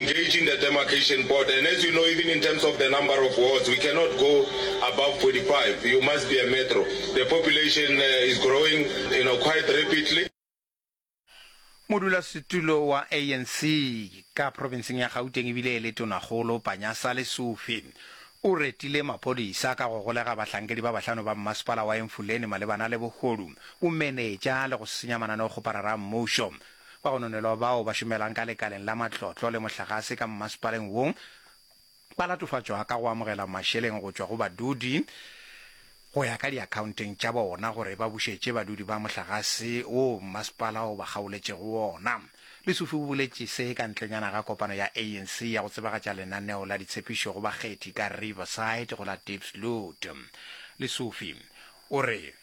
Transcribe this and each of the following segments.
Engaging the demarcation border and as you know even in terms of the number of wards we cannot go above 45 you must be a metro the population is growing you know quite rapidly. Modulasetulo wa ANC ka profenseng ya Gauteng ebile e le Tonakgolo Panyaza Lesufi o retile maphodisa ka go golega bahlankedi ba bahlano ba mmasepala wa Emfuleni malebana le bogodu, bomenetša le go senya mananeo go parara a mmušo. ba go nonelwa bao ba šomelang ka lekaleng la matlotlo le mohlagase ka mmasepaleng wo ba latofatšwa ka go amogela mašeleng go tšwa go badudi go ya ka diakhaonteng tša bona gore ba bušetše badudi ba mohlagase wo mmasepala o ba kgaoletšego wona. Lesufi o boletše se ka ntlenyana ga kopano ya ANC ya go tsebagatša lenaneo la ditshepišo go bakgethi ka Riverside go la Diepsloot. Lesufi o re.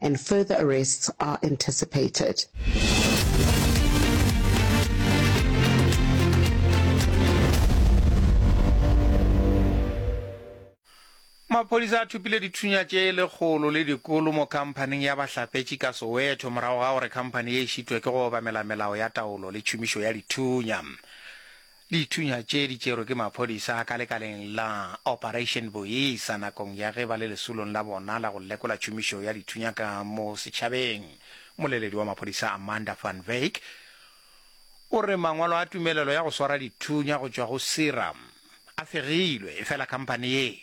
and further arrests are anticipated. maphodisa a thupile dithunya tše e lekgolo le dikolo mo khamphaning ya bahlapetši ka soweto morago ga gore khamphani ye e šitwe ke go obamela melao ya taolo le tšhomišo ya dithunya Dithunya tše di tšerwe ke maphodisa ka lekaleng la Operation Boisa nakong ya ge ba le lesolong la bona la go lekola tšhomišo ya dithunya ka mo setšhabeng. Mmoleledi wa maphodisa Amanda van Wyk o re mangwalo a tumelelo ya go swara dithunya go tšwa go SIRAM a fegilwe efela khamphane ye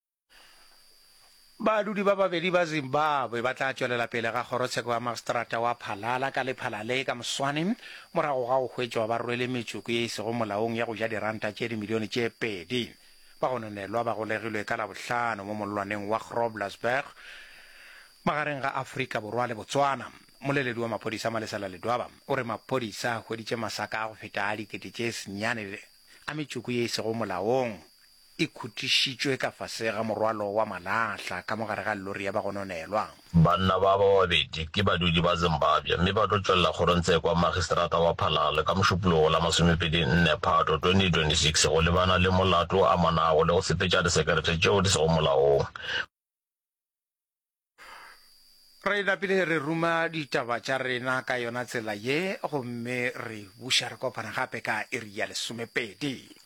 Badudi ba babedi ba Zimbabwe ba tla tšwelela pele ga kgorotsheko ya magstrata wa Phalala ka lephala le ka moswane morago ga go hwetšwa ba rwele metsoko ye e sego molaong ya go ja diranta tše dimilione tše pedi. Ba gononelwa ba golegilwe ka Labohlano mo mollwaneng wa Groblersberg magareng ga Afrika Borwa le Botswana. Mmoleledi wa maphodisa Malesela Ledwaba o re maphodisa a hweditše masaka a go feta a dikete tše senyane a metsoko ye e sego molaong. e khutišitšwe ka fase ga morwalo wa malahla ka mo gare ga lori ya bagononelwa. Banna ba ba babedi ke badudi ba Zimbabwe mme ba tlo tšwelela kgorongtshe kwa Magistrata wa Phalalo ka Mošupologo wo la masomepedi nne Phato 2026 go lebana le molato o amanago le go sepetša disekerete tšeo di sego molaong. Re napile re ruma ditaba tša rena ka yona tsela ye gomme re buša re kopana gape ka iri ya lesomepedi.